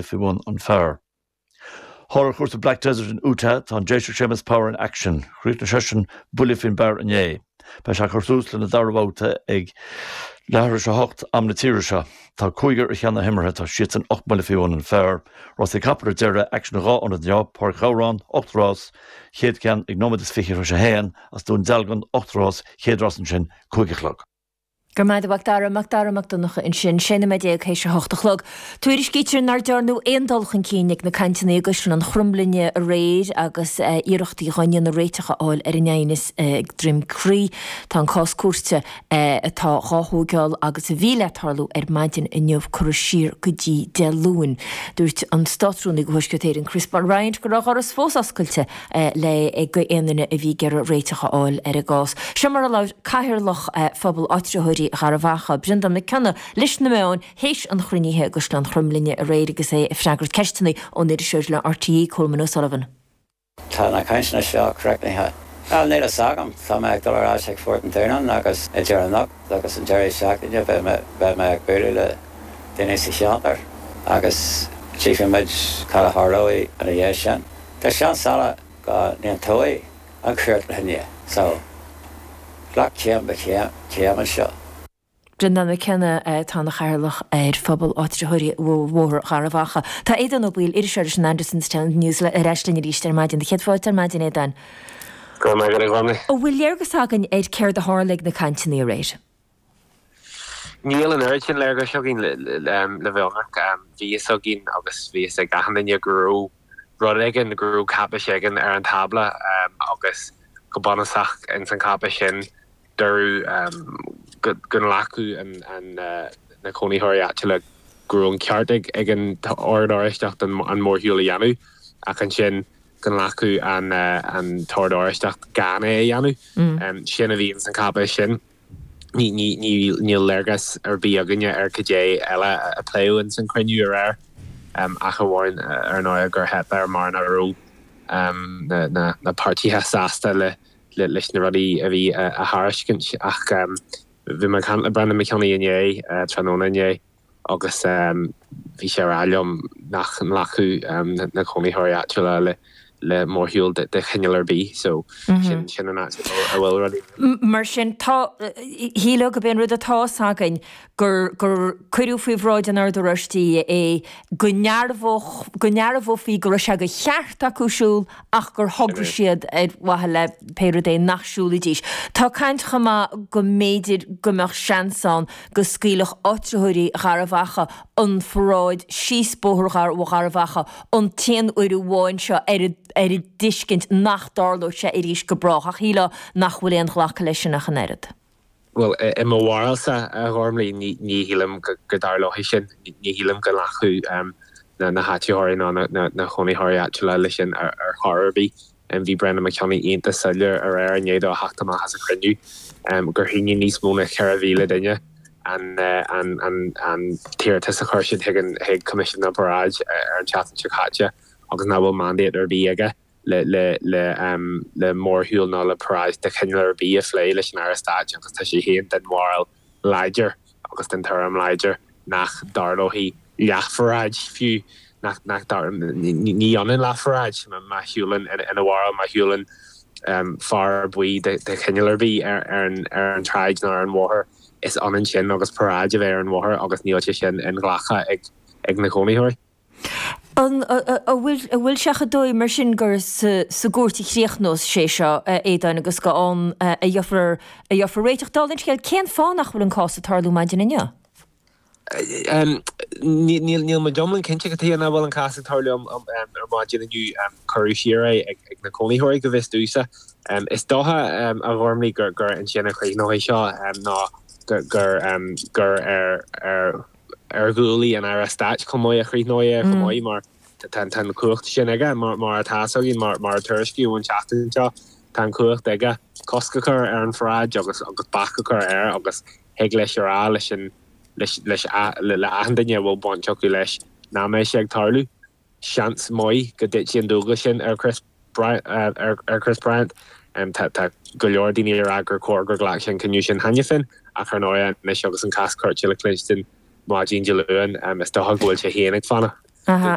faoi bhun an phar. Thall ar chúrsa Black Desert in Utah tá an Déiseach Seamus Power in Action. Chríochnaigh seisean buille faoin bpar inné. Beidh sé ag cur tús lena dara bhabhta ag leathuair théis a hocht am na tíre seo. Tá cúigear i gceannas na himeartha, tá siadsan ocht mbuille faoi bhun an phar. Rásaí capall ar deireadh in action dhá ionad inniu, Páirc Ghabhrán, ocht rás, chéad ceann ag nóiméad is fiche tar éis a haon, is Dún Dealgan, ocht rás, chéad rás ansin, cúig a chlog. Go raibh maith agat, a Mhacdara, Macdara Mac Donncha ansin, 16 nóiméad théis a hocht a chlog. Tuairiscítear nár dearnadh aon dul chun cinn ag na cainteanna i gCaisleán Chromghlinne aréir agus iarrachtaí dhá ndéanamh réiteach a fháil ar an aighneas ag Droim Chrí. Tá an cás cúirte, atá dhá thóigeáil agus a bhí le tarlú ar maidin inniu, curtha siar go dtí Dé Luain. Dúirt an Státrúnaí go Thuaisceart Éireann, Chris Bryant go raibh a dhoras fós oscailte, le go aon duine a bhí ag iarraidh réiteach a fháil ar an gcás. Seo mar a labhair Cathaoirleach Phobal Áitritheoirí Gharbh Achaidh, Breandán Mac Cionnaith, leis na meáin théis an chruinnithe i gCaisleán Chromghlinne aréir agus é ag freagairt ceisteanna ón iriseoir le RTÉ, Colman O'Sullivan. Tá na cainteanna seo críochnaithe. Níl níl fhios agam. Tá mé ag dul ar ais ag Phort an Dúnáin agus idir anocht agus an deireadh seachtaine beidh mé beidh mé ag bualadh le daoine sa cheantar agus tchífimid cad a tharlóidh ina dhiaidh sin. Tá seans eile go n-aontóidh an chúirt linne, so glac céim go céim anseo. Brendan McKenna atá ina Chathaoirleach ar Phobal Áitritheoirí Bhóthar Gharbh Achaidh. Tá Aodán Ó Baoill, iriseoir leis an Andersonstown News ar ais linn arís ar maidin. Céad fáilte ar maidin, Aodán. Go raibh maith agat, a Dhonncha. An bhfuil léargas againn ar céard a tharla ag na cainteanna aréir? Níl an oiread sin léargais againn le bheith ionraic. Bhí a fhios againn, agus bhí a fhios ag achan duine, go raibh rud éigin, go raibh cáipéis éigin ar an tábla, agus go bunúsach ins an cháipéis sin deireadh go nglacfadh na cónaitheoirí áitiúla go raibh an ceart ag an Ord Oráisteach an mórshiúl a dhéanamh, ach ansin go nglacfadh an tOrd Oráisteach gan é a dhéanamh. Sin a bhí ins an cháipéis sin. Níl léargas ar bith againne ar cad é eile a pléadh ins an chruinniú aréir, ach amháin ar ndóigh gur theip air mar nach raibh na páirtithe sásta leis na rudaí a bhí á dtairiscint. Ach bhí mé ag caint le Brendan McKenna inné, tráthnóna inné, agus bhí sé ag rá liom nach nglacfadh na cónaitheoirí áitiúla le mórshiúl de chineál ar bith, so sin an áit a bhfuil rudaí. Mar sin, tá, shílfeá gob é an rud atá 's againn gur cuireadh faoi bhráid an Oird Oráistigh é, go ndearbhófaí go raibh sé de cheart acu siúl ach gur thograigh siad ar mhaithe le pé rud é nach siúlfaidís. Tá caint chomh maith go mb'fhéidir go mbeadh seans ann go scaoilfeadh áitritheoirí Gharbhachaidh an pharáid síos Bóthar Gharbhachaidh an t-aon uair amháin seo ar an dtuiscint nach dtarlóidh sé arís go brách, ach shílfeá nach bhfuil aon ghlacadh leis sin ach an oiread. Bhuel, i mo bharúilsa, a Ghormfhlaith, ní shílim go dtarlóidh sin. Ní shílim go nglacfaidh na háitritheoirí ná na cónaitheoirí áitiúla leis sin ar chor ar bith. Bhí Breandán Mac Cionnaith iontach soiléir aréir i ndiaidh dó a theacht amach as an chruinniú gur shínigh níos mó ná 4,000 duine an t-iarratas a chuir siad chuig Coimisiún na bParáid ar an tseachtain seo caite agus nach bhfuil mandate ar bith aige. le mórshiúl nó le paráid de chineál ar bith a phlé leis an Aire Stáit agus tá sé féin den bharúil láidir agus den tuairim láidir nach dtarlóidh leathpharáid fiú. Ní ionann leathpharáid, má shiúlann ina bharúil, má shiúlann fear buí de chineál ar bith ar an tsráid nó ar an bhóthar, is ionann sin agus paráid a bheith ar an bhóthar agus níl sé sin inghlactha ag na cónaitheoirí. An bhfuil sé chomh dóigh mar sin gur sa gcúirt a chríochnós sé seo, a Aodáin, agus gur ann a gheofar réiteach? Dála an scéil, cén fáth nach bhfuil an cás ag tarlú maidin inniu? Níl mé go hiomlán cinnte cad chuige nach bhfuil an cás ag tarlú ar maidin inniu. Cuireadh siar é ag na cónaitheoirí, go bhfios domhsa. Is dócha, a Ghormfhlaith, gur ansin a chríochnóidh seo, nó gur ar ar ghuaillí an Aire Stáit chomh maith, a chríochnófar é chomh maith mar tá an chumhacht sin aige. Mar atá a fhios againn, mar a tuairiscíodh an tseachtain seo, tá an chumhacht aige cosc a chur ar an pharáid agus bac a chur air agus thig leis a rá leis an, leis, leis, le achan duine a bhfuil baint acu leis nach mbeidh sé ag tarlú. seans maith go dtitfidh an dualgas sin ar Chris Bryant. Tá go leor daoine ag rá gur chóir gur ghlac sé an cinneadh sin cheana féin, ach ar ndóigh, anois agus an cás cúirte le cluinstin maidin Dé Luain, is dócha go bhfuil sé féin ag fanacht.